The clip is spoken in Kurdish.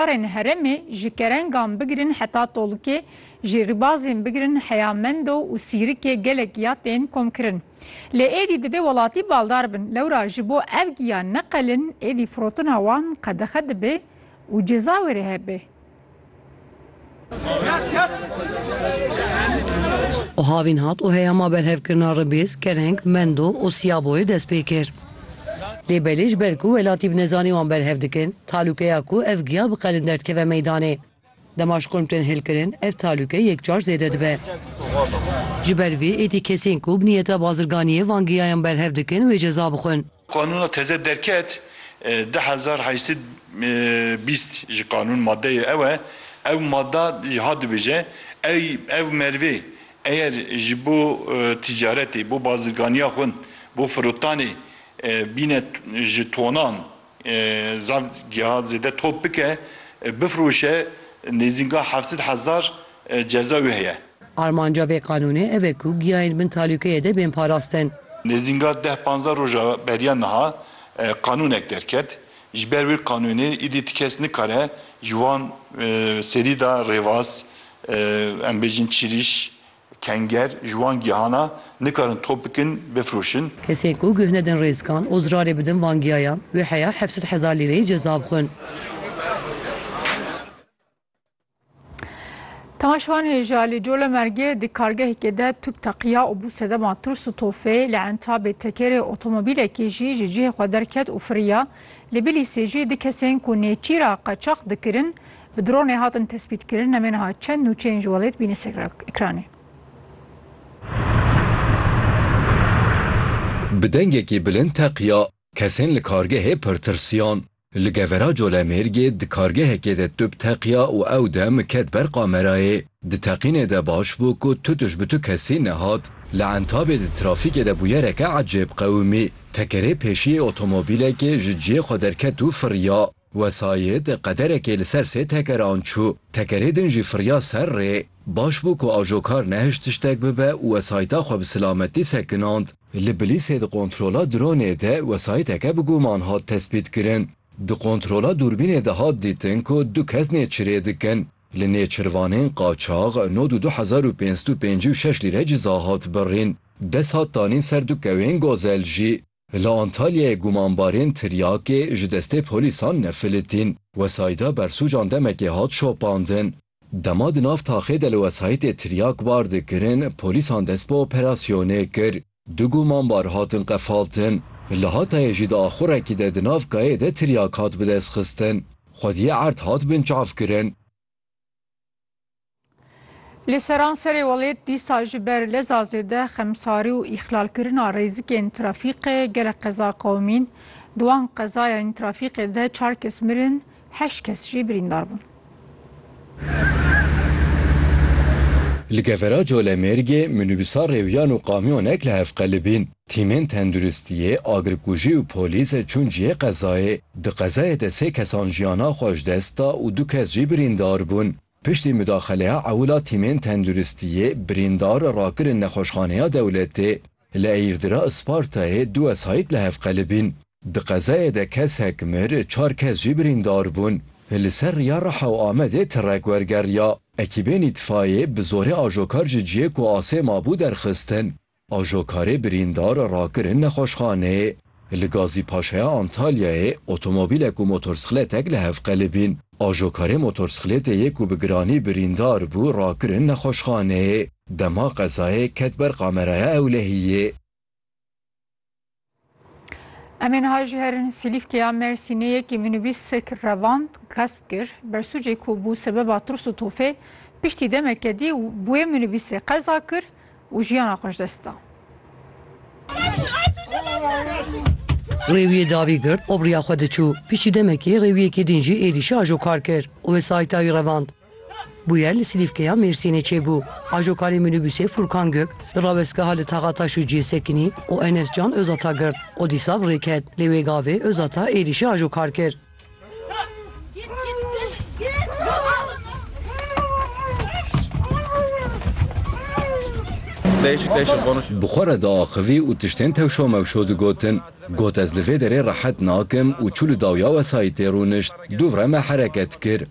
Karên herêmê ji kerengan bigirin heta tolkê, ji ribazên bigirin heya mendo û sîrikê gelek ya tên komkirin. Lê êdî dibê welatî baldar bin. Lewra ji bo ev giya neqelin êdî firotina wan qedexe dibê û ceza wê re hebê. û havîn hat û heyama berhevkirina Ribîz, Kereng, Mendo û Sîyaboyê dest pê kir. Lê belê ji ber ku welatî bi nezanî wan berhev dikin, talûkeya ku ev giya biqelin derdikeve meydanê. Dema ji kurm tên hêlkirin, ev talûke yekcar zêde dibe. Ji ber vê êdî kesên ku bi nîyeta bazirganiyê van giyayan berhev dikin wê ceza bixwin. Qanûna teze derket du hezar heşt sed bîst ji qanûn madeyê ew e, ew mada jî hat dibêje, ey ev merivê eyer ji bo tîcaretê, bo bazirganiya xwin, bo firotanê bîne ji tonan zaf giha zêde top bike, bifiroşe nêzînga heft sed hezar ceza wê heye. Armanca vê qanûnê ev e ku giyayên bin talûkeyê de bên parastin. Nêzînga deh panzdeh roja beriya niha qanûnek derket. Ji ber wê qanûnê îdî ti kes nikare ji wan serî de rêvaz, em bêjin çirîş, kenger ji wan gihana nikarin top bikin, bifroşin. Kesên ku guh nedin rêzkan û zirarê bidin van giyayan wê heya heft sed hezar lîreyê ceza bixwin. Temaşewan hêja li Colemergê di kargehekê de tûp teqiya û bû sedema tirs û tofê li entabê tekerê otomobîlekê jî ji cihê xwe derket û firiya. Li Bilîsê jî du kesên ku nêçîra qeçax dikirin bi dronê hatin tespîtkirin. Em ê niha çend nûçeyên ji welêt bîne ser ekranê. Bi dengekî bilind teqiya kesên li kargehê pir tirsiyan. Li gevera Colemêrgê di kargehekê de tûp teqiya û ew dem ket ber kamerayê. Di teqînê de baş bû ku tutiş bi tu kesî nehat. Li Entabê di trafîkê de bûyereke ecêb qewimî. Tekerê pêşiyê otomobîlekê ji ciyê xwe derket û firiya. Wesayît qederekê li ser sê tekeran çû. Tekerê din jî firiya ser rê. Baş bû ku ajokar nehişt tiştek bibe û wesayîta xwe bi silametî sekinand. Li Bilîsê di kontrola dronê de wesayîteke bi guman hat tespîtkirin. Di kontrola dûrbînê de hat dîtin ku du kes nêçirê dikin. Li nêçirvanên qaçax nod û du hezar û pênc sed û pêncî û şeş lîre ciza hat birîn. Dest hat danîn ser du kewên gozel jî. Li Antalyayê gumanbarên tiryakê ji destê polîsan nefilitîn. Wesayîda bersûcan demekê hat şopandin. Dema di nav taxê de li wesayîtê tiryak bar dikirin, polîsan dest bi operasyonê kir. Du gumanbar hatin qefaltin. Li Hatayê jî di axurekî de di nav kayê de tiryak hat bidestxistin. Xwediyê erd hat binçavkirin. Li seranserê welêt dîsa ji ber leza zêde xemsarî û îxlalkirina rêzikên trafîkê gelek qeza qewimîn. Di wan qezayên trafîkê de çar kes mirin, heşt kes jî birîndar bûn. Li Gevera Colemêrgê minîbûsa rêwiyan û kamyonek li hev qelibîn. Tîmên tenduristiyê, agirkujî û polîs çûn cihê qezayê. Di qezayê de sê kesan jiyana xwe ji dest da û du kes jî birîndar bûn. Piştî mudaxeleya ewil a tîmên tenduristiyê, birîndar rakirin nexweşxaneya dewletê. Li Eyirdira Ispartayê du wesayît li hev qelibîn. Di qezayê de kesek mir, çar kes jî birîndar bûn. Li ser riya Riha û Amedê tirek wergeriya. Ekîbên îtfayê bi zorê ajokar ji cihê ku asê mabû derxistin. Ajokarê birîndar rakirin nexweşxaneyê. Li Gazî Paşaya Antalyayê otomobîlek û motorsixlêtek li hev qelibîn. Ajokarê motorsixlêtê yê ku bi giranî birîndar bû rakirin nexweşxaneyê. Dema qezayê ket ber kameraya ewlehiyê. Em ê niha jî herin Silîfkeya Mêrsînê yekî minîbîsek revand xesp kir. Bersûcê ku bû sebeba tirs û tofê, piştî demeke dî wê minîbîsê qeza kir. Û jiyana xwe ji dest da. Rêwiyê davî girt û bi riya xwe diçû. Piştî demekê rêwiyekî din jî êrîşa ajokar kir û wê sayîta wî revand. Bûyer li Silîfkeya Mêrsînê çêbû. Ajokarê mînîbûsê Furkan Gök li rawestgeha li taxa taş û cihê sekinî û Enes Can Ozata girt û dîsa bi rê ket. Lê wê gavê Ozata êrîşa ajokar kir. Bi xwe re diaxivî û tiştên tewşomewşo digotin. Got ez li vê derê rehet nakim û çû li dawya wesayîtê rûnişt. Dûvre me hereket kir.